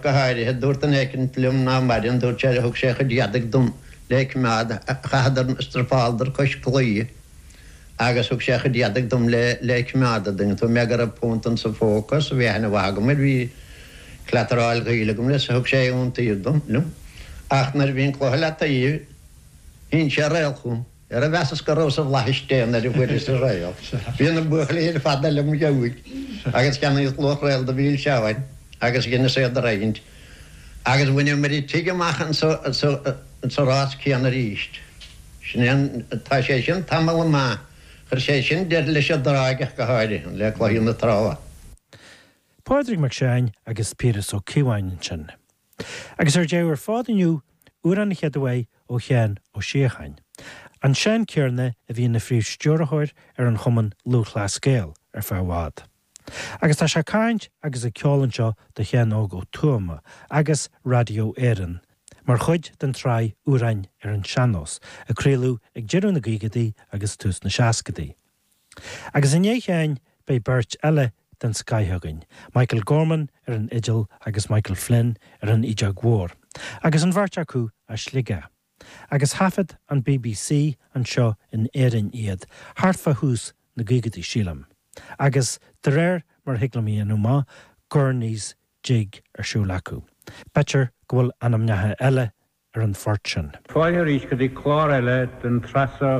Go háirithe, dúirt duine éicint liom ná maireann, dúirt sé leo, thug sé a chuid éadaigh dom le coimeád, chaitheadar, struipeáladar cois claí agus thug sé a chuid éadaigh dom le le coimeád an dtuigeann tú mé go raibh punt insa phóca is bhí aithne mhaith agam air, bhí cleataráil gaoil agam leis, thug sé iontaoibh dom, liom. Ach nuair a bhí an cluiche le taobh, shín sé réal chugam. Ó mheasas go rabhas i bhflaithis Dé nuair a fuaireas an réal, bhí na buachaillí ar fad eile im' dhiaidh, agus cheannaíos luach réal de mhilseáin agus dheineas iad a roinnt, agus bhaineamair an tigh amach insa rás céanna arís. Sin é an. Tá sé sin tamall maith. Chuir sé sin deireadh leis an dtráigh seo go háirithe, le cluichí na trá. Pádraig Mac Seáin agus Piaras Ó Cíobháin ansin. Agus ar deireadh ar fad inniu, Amhrán an Chéad Aoi ó Sheán Ó Síocháin, an Seán céarna a bhí ina phríomhstiúrthóir ar an Chumann Lúthchleas Gael ar feadh i bhfad. Agus tá sé ag caint agus ag ceol anseo do Sheán Óg Ó Tuama ar Raidió Éireann mar chuid den tsraith Amhráin ar an Sean-nós a craoladh ag deireadh na gcaogadaí agus tús na seascadaí. Agus i ndiaidh Sheáin beidh beirt eile den scoith againn, Michael Gorman ar an fhidil agus Michael Flynn ar an fheadóg mhór, agus an bheirt acu as Sligeach. Agus thaifead an bbc anseo in Éirinn iad thart fá thús na gcaogadaí, sílim. Agus de réir mar a thig liom a dhéanamh amach Gurney's jig ar siúl acu, b'fhéidir go bhfuil ainmneacha eile ar an phort sin. Fáilte arís go dtí clár eile den tsraith seo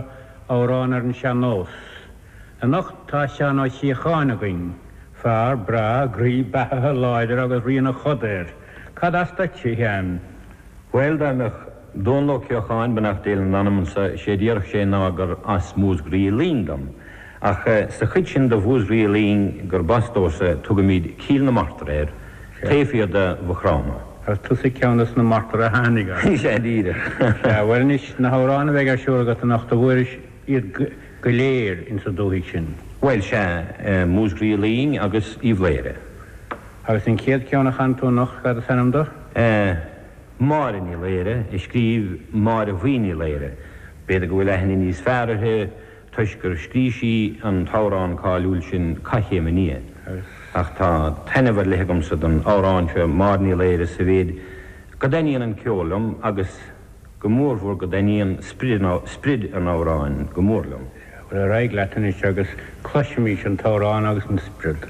Amhráin ar an Sean Nós. Anocht tá Seán Ó Síocháin againn. Fear breá, groí, beathaithe, láidir agus rian a choda air. Cad as duit, a Sheáin? Bhuel, dá mbeadh Dónall Ó Céileachair, beannacht Dé lena anam, anseo, sé a déarfadh sé ná gur as Múscraí Uí Fhloinn dom. Ach sa chuid sin de Mhúscraí Uí Fhloinn gurb as domhsa tugaimid Cill na Martra air, taobh thiar de Mhaigh Chromtha. Ar tusa ceann dos na martar a tháinig as? Is ea, díreach. Sea, bhuel anois, na hamhráin a bheidh ar siúl agat anocht, an bhfuairis iad go léir ins an dúthaigh sin? Bhuel, sea, Múscraí Uí Fhloinn agus Uíbh Laoghaire. Agus an chéad cheann a chanfaidh tú anocht, cad is ainm do? Máire Ní Laoghaire, a scríobh Máire Bhuí Ní Laoghaire. B'fhéidir go bhfuil aithne níos fearr uirthi. toisc gur scrígh sí an t-amhrán cáiliúil sin Cath Chéim an Fhia. Ach tá taitneamh ar leith agamsa don amhrán seo Máire Ní Laoghaire sa mhéid go dtaitníonn an ceol liom agus go mórmhór go dtaitníonn sprid an amhráin go mór liom. Ar aghaidh leat anois agus cloisfimís an t-amhrán agus an sprid.